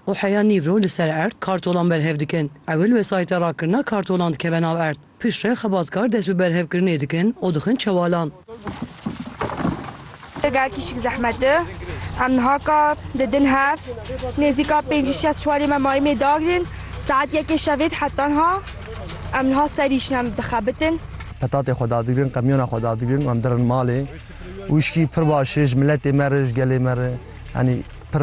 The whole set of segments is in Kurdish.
û heya nîv ro li ser erd kartolan berhev dikin. Ewil wesayîta rakirina kartolan dikeve nav erd. Pişt re xebatkar dest bi berhevkirinê dikin û dixin çewalan. Eger kişik zehmet di, em niha ka didin hev. Nêzîka pêncî şeş çwarê me mayî mê dagrin. Saet yekê şevê dihe tenha em niha ser îş ne em dixebitin. Petatê xwe dadigrin, qemyona xwe dadigrin û em dirin malê. Wişkî pir baş e ji miletê me re, ji gelê me re. Yanî pir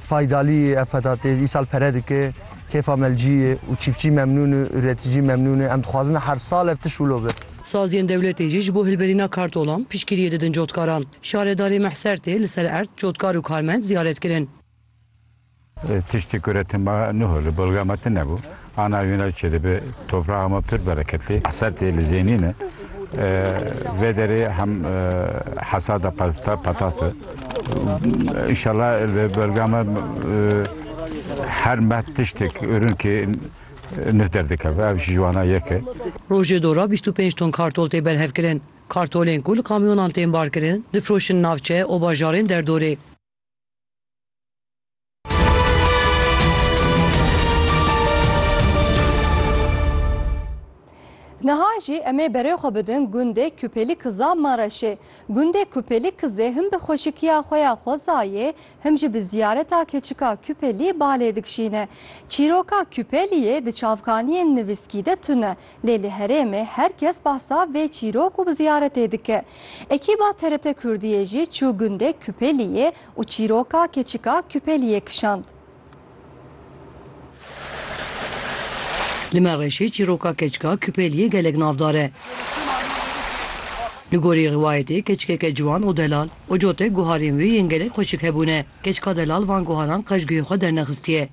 Faydalî, Ev petatês îsal pere dike, kêfa me li cî ye û çîftçî memnûn e, uretîcî memnûn e. Em dixwazin her sal ev tişt wilo be. Saziyên dewletê jî ji bo hilberîna kartolan piştgiriyê didin cotkaran. Şaredarê Mehser tê li ser erd cotkar û karmend ziyaret kirin. Tiştê ku re tim a niho li balga me tune bû. Ana wîna çi dibe topraxa me pir bereketli ser tê li zênîn e. Vê derê hem hesada peta petat e. Înşela li belga me her meh tiştek ûrinkê nuh derdikeve ev ji wana yek e. Rojê dora bîst û pênc ton kartol tê berhevkirin. Kartolên ku li kamyonan tên barkirin, difiroşin navçe û bajarên derdorê. Niha jî em ê berê xwe bidin gundê Kupelî Kiza Mareşê. Gundê Kupelî Kizê him bi xweşikiya xwe ya xwezayê him jî bi ziyareta keçika Kupelî balê dikişîne. Çîroka Kupelîyê di çavkaniyên nivîskî de tune. Lê li herêmê her kes behsa vê çîrok û ziyaretê dike. Ekîba TRT Kurdiyê jî çû gundê Kupeliyê û çîroka keçika Kupeliyê kişand. Li me reşê çîroka keçika Kupeliyê gelek navdar e. Li gorî rivayetê keçikeke ciwan û delal, Ocote, guharên wê yên gelek xweşik hebûne. Keçika delal van guharan qej guhê xwe dernexistiye.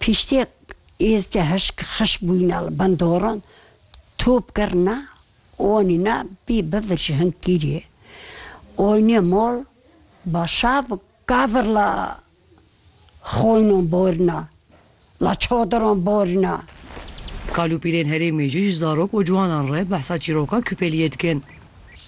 Piştî êzdî hişk xişk bûyîna li bin doran, top kirina û anîna bî bivir ji hingkîrê. Oynê mol ba şav kavir la xoynan borîna, la çadiran borîna. Kalûpîlên herêmê jî ji zarok û ciwanan re behsa çîroka Kûpeliyê dikin.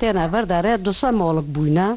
Têne vir derê du sê molik bûyne.